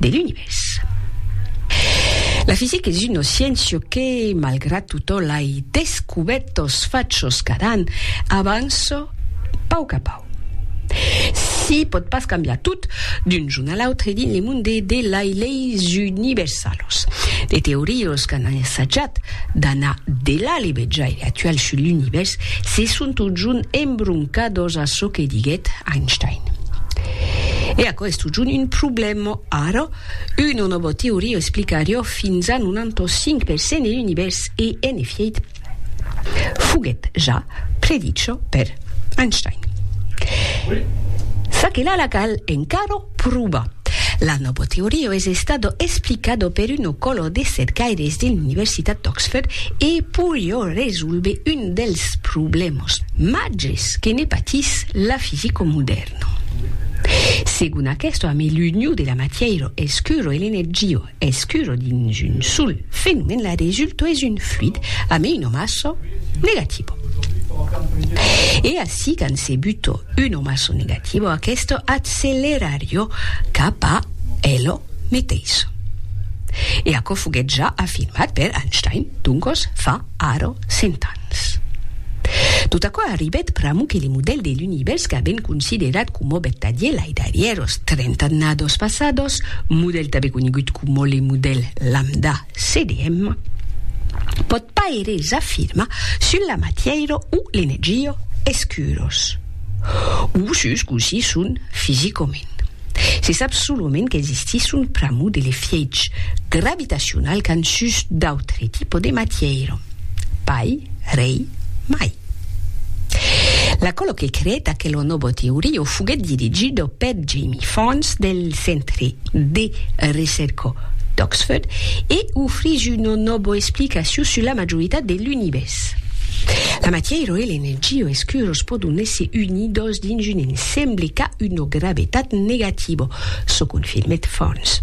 de l'Univèrs. La fisica es una sciéncia que, malgrat tota lai descubèrtas fachas cada an, avança pauc a pauc. Se pòt pas cambiar tot d'un jorn a l'autre dins le monde de lai leis universalas. De teorias qu'an assajat d'anar delà le vejaire actual sus l'Univèrs se son totjorn embroncadas a çò que diguèt Einstein. E aquò es Sujun un problèma ara, una nòva teoria explicariá fins a 95 per cent e l'univèrs e, en efièit, foguèt ja predicha per Einstein. Ça que la la cal encara provar. La nòva teoria es estada explicada per una còla de cercaires de l'Universitat d'Oxford e poriá resolver un dels problèmas màgers que ne patís la fisica modèrna. Segon aquesto a me l'union de la matièiro escuro e l'energio escuro dins un sol fenomèn la resulto es un fluid a me una massa negativo. E ací quand se buto una massa negativo aquesto accelerarió cap a elo meteiso. E aquò foguèt ja afirmat per Einstein, doncos fa ara 100 ans. Pss. Tot aquò arribèt pr'amor que le modèl de l'Univèrs qu'avèn considerat coma vertadier lai darrièr os trenta annados passados, modèl tanben conegut coma le modèl lambda CDM, pòt pas eres afirmar sul la matièira o l'energia escuros. o sus cossí son fisicament. Se sap solament qu'existisson pr'amor de l'efièch gravitacional qu'an sus d'autre tipo de matièira. Pai, rei, mai. L'acòlo que creèt aquela nòva teoria foguèt dirigido per Jamie Farnes del Centre de Recerca d'Oxford e ofrís una nòva explicacion sus la majoritat de l'Univèrs. Ritz. La matièira e l'energia escuros pòdon èsser unidos dins un ensemble qu'a una gravetat negativa, çò confirmèt Thornes.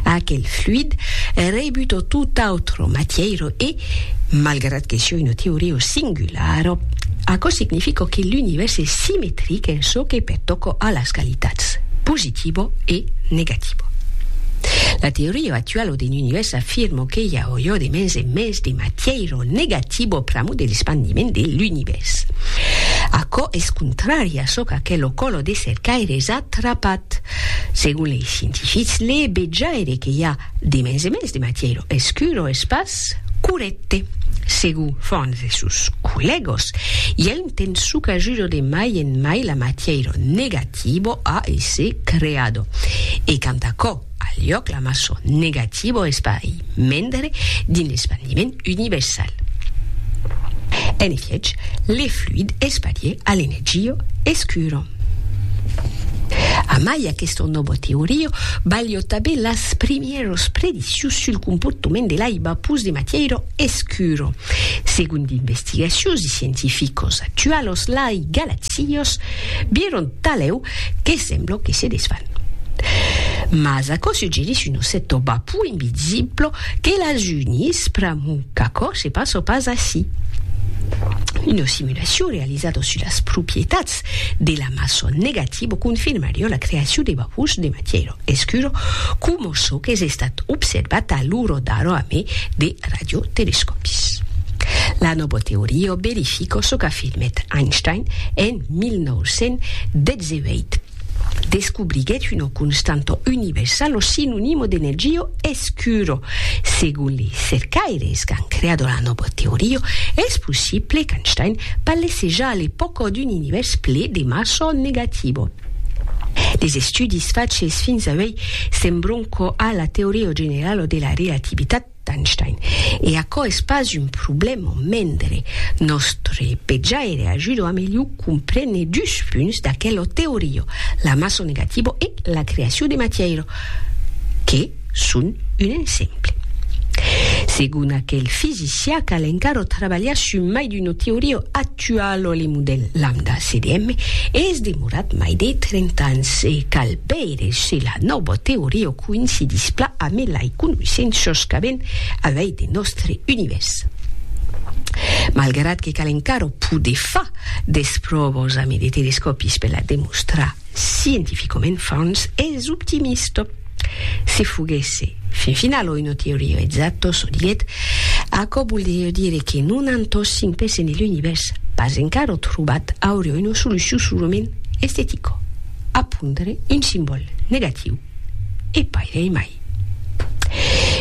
Aquel fluid rebut a tota autra matièira e, malgrat que siá una teoria singulara, aquò significa que l'univèrs es simetric en çò que pertòca a las qualitats positiva e negativa. La teoria actuala d'un univèrs afirma que i a ojó de mens en mens de matièira o negativo pr'amor de l'espandiment de l'Univèrs. Aquò es contrari a çò qu'aquel o colo de cercaires a trapat. Segon lei scientifics, le vejaire que i a de mens e mens de matièra escura es pas corrècte. Segon Franz e sos collègas, i a un temps çò qu'ajuda de mai en mai la matièra negativa a èsser creada. E quant a aquò Al liòc la maçon negativa o espari mendre dins l'espandiment universal. En efiech, le fluid esparier a l'energia escura. Amai aquesta nòva teoria balhò tanben las primièras prediccions sul comportament de l'aiba pus de matièira escura. Segon d'investigacions de scientificos actualos, lai galaxias Sios vieron talèu que semblo que se desfan. Mas aquò suggerís un osset o bapou invisible que las unís pr'amor qu'aquò se passe pas ací. Una simulacion realizada sus las propietats de la mason negativa confirmarió la creacion de bapous de matièra. Escuro, coma çò qu'es estat observat a l'uro d'aro a mai de radiotelescòpis. La nòva teoria verifica çò qu'afirmèt Einstein en 1918. Descobriguèt una constanta universala sinonima d'energia escura. Segon li cercaires qu'an creada la nòva teoria, es possible qu'Einstein parlasse ja a l'epòca d'un univèrs ple de massa negativa. Les estudis faches fins auei sembron quò a la teoria generala de la relativitat d'Einstein. E aquò es pas un problèma mendre nòstre petjaire ajuda a melhor comprene dus punts d'aquela teoria, la massa negativa e la creacion de matièira, que, son un exemple. Segon aquel fisicià, cal encara trabalhar sus mai d'una teoria actuala o le modèl lambda CDM es demorat mai de 30 ans e cal veire se la nòva teoria coïncidís pla amé lai conoissenças qu'avèn avei de nòstre univèrs. Malgrat que cal encara poder far des pròvas amé de telescòpis per la demostrar, Scientificament fons es optimista. Se foguèsse fin finala una teoria exacta, çò dilhet, aquò voldriá dire que non an tossin pes ene l'Univèrs pas encara trobat auria una solucion solament estetica, a pondre un simbòl negatiu. e pairei mai.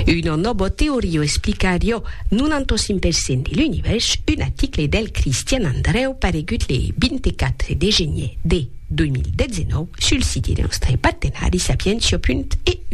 Una nòbo teorio explicarió 95 per cent de l'univèrs, un aticle del Cristian Andrèu paregut le 24 de genier de 2019 sul siti de nòstre partenari sapientia.eu.